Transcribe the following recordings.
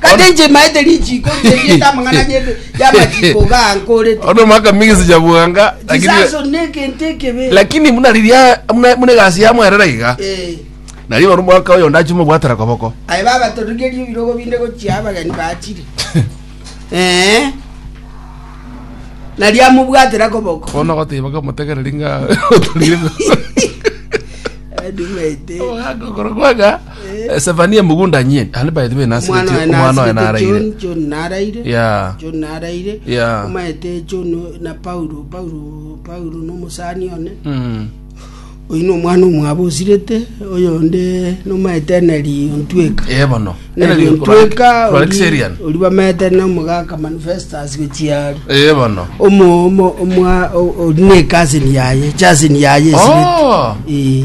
Kare inche maete richiiko ri'erieta amang'ana y'ebe- y'amachiiko gaa nkorete. Ono mwaka mingi sijabuanga lakini Chisaso negento ekebe. lakini muna riria muna muna egasi ya mwerera iga Eh, nari oro mwaka oyo ndachimo bwatera koboko aye babatorigerie ebirogo binde gochia abageni bachire. Eh. Nari amobwatera koboko. kono gotiba kamotegereri nga otorire Adi maete. ogokora kwaga Eh, Sefania emogunda nyie ande by the way omwana oye nasigeti omwana oye nasibete naraire john john naraire Yeah. john naraire Yeah. omaete john na paulo paulo paulo nomosani one Mm. oyu na omwana omwabo osirete oyo onde nomaete eneri ontweka Eh, bono eneri ontweka rwarekiserian ori bamaete nomogaka manifestas gochiari ee bono omo omo omwa o- ori ne cousin yaye cousin yaye esirete Oh! Eh.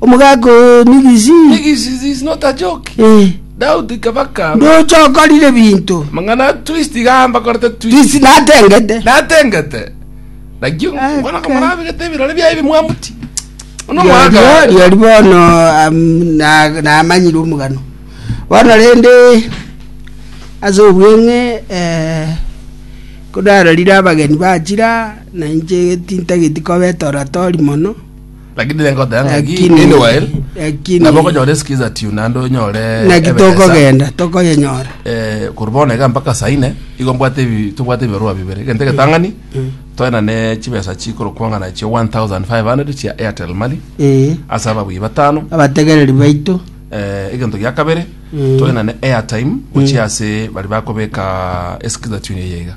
Omogaka oo nigisi? Nigisi this is not a joke. Eh. Doubt ikabakama. Ndoche okorire binto. Mang'ana twist igamba korete twist. Twist natengete. Natengete. Nakio mwana kamara abigete ebirore bia ebi mwamuti. Ono mwana. Yori bono namanyire omogano. Bono rende ase obweng'e eh kodarorire abageni bachira na inche tintageti kobeta oratori mono. Lakini renge oteba ng'aki Lakini- meanwhile lakini- nabo okonyora esikiza tune naende onyore naki ebesa. tokogenda tokoyenyora Eh, korwa bono iga mpaka saa ine igo mbwate ebi- tobwate ebibarua bibere egento egetang'ani toena ne chibesa chikorokwang'ana chia 1500 chia airtel money Eh, ase ababui batano abategereri baito eh, egento gia kabere toena ne airtime gochia ase bari bakobeka esikiza tune eyeiga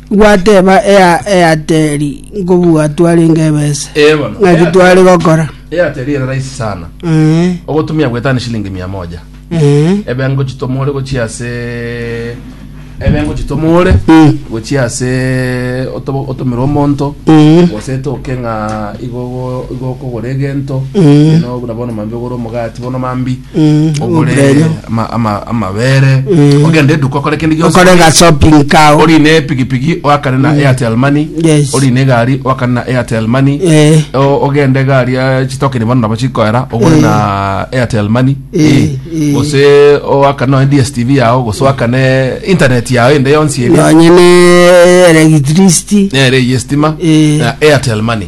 Gwateba Eateri, Nkobua twarenge ebese, Eh, bono. ng'aki Airtel. tware gokora? Airtel ere rahisi sana Eh, ogotumia gwetana shilingi mia moja eh, ebe ngochitomore gochia ase ebe ngochitomore Mm. gochia ase oto- otomere omonto mm, gose etoke ng'a igo igo- igo okogora egento Mm. ino buna bono mambi ogore omogati bono mambi Mm, ogure oburenyo. ama- ama- amabere Mm. ogende eduka okore kende gionsi okorega shopping kao ori ne pigipigi oakane na airtel money Yes. ori ne gari oakane na airtel money Eh. O- ogende gari ya chitokeni bono nabo chikoera ogore Eh. na airtel money Eh, Eh. eh. gose oakane noe dstv yao gose oakane internet yao ende yonsi ere nonye ne electricity nere yestima Eh. na airtel money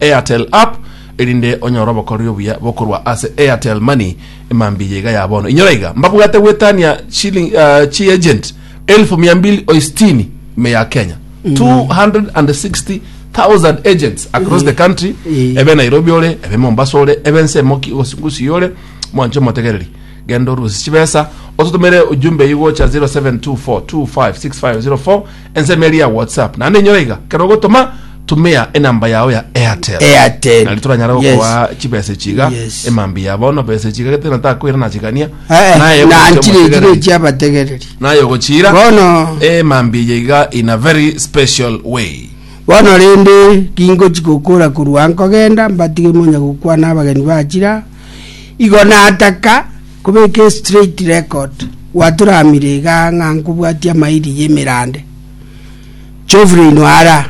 Airtel app erinde onyore obokoreri obuya bokorwa ase Airtel Money emambia yaiga ya bono. Inyora iga mbabwate gwetania shilling uh, chi agent elfu mia mbili oistini me ya Kenya 260,000 agents across the country Eh. ebe Nairobi ore ebe Mombasa ore ebe nse moki osingusi yore mwanche motegereri genda orusi chibesa otutumire ujumbe igocha 0724256504 Ensemo eria ya WhatsApp naende enyora iga ekero ogotoma tumia enamba yao ya Airtel. Airtel. Nari toranyare Yes. gokoa chibesa echi iga Yes. emambi ya bono besa echi iga gete natakwera nachigania. Eh, Naye eh, ogochia nanchire echi omotegereri. gechi abategereri Naye ogochira bono emambi eye iga in a very special way. bono rende ringochi gokora korwa nkogenda mbatige monya gokwana abageni bachira igo nataka Kobeka a straight record gwatoramire iga ng'a nkobwatia amairi y'emerande. Jovlin Wara,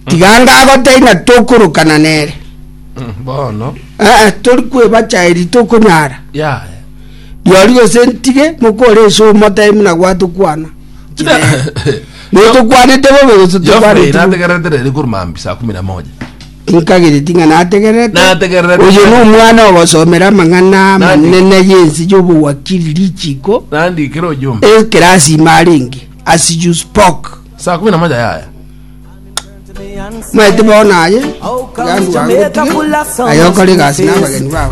tiga ngagoteina tokorokana nere. Mm, bono Eh, eh, tori kwebacha eri tokonyara. yaya Riori gose ntige mokore ase omotebe muna gwatokwana. Notokwanete bobe gose Geoffrey tokwanete bobe. nategeretereri korwa maambia saa kumi na moja Nkagireti ng'a nategererete. Nategererete. Oyo nomwana ogosomera amang'ana amanene y'ense y'obowakiri richiiko. Nandikire ojumbe. Ekero asime arenge, as you spoke. Saa kumi na moja yaya. Maete bono aye, Iga ndwango tige, aye okore egasi n'abageni babo.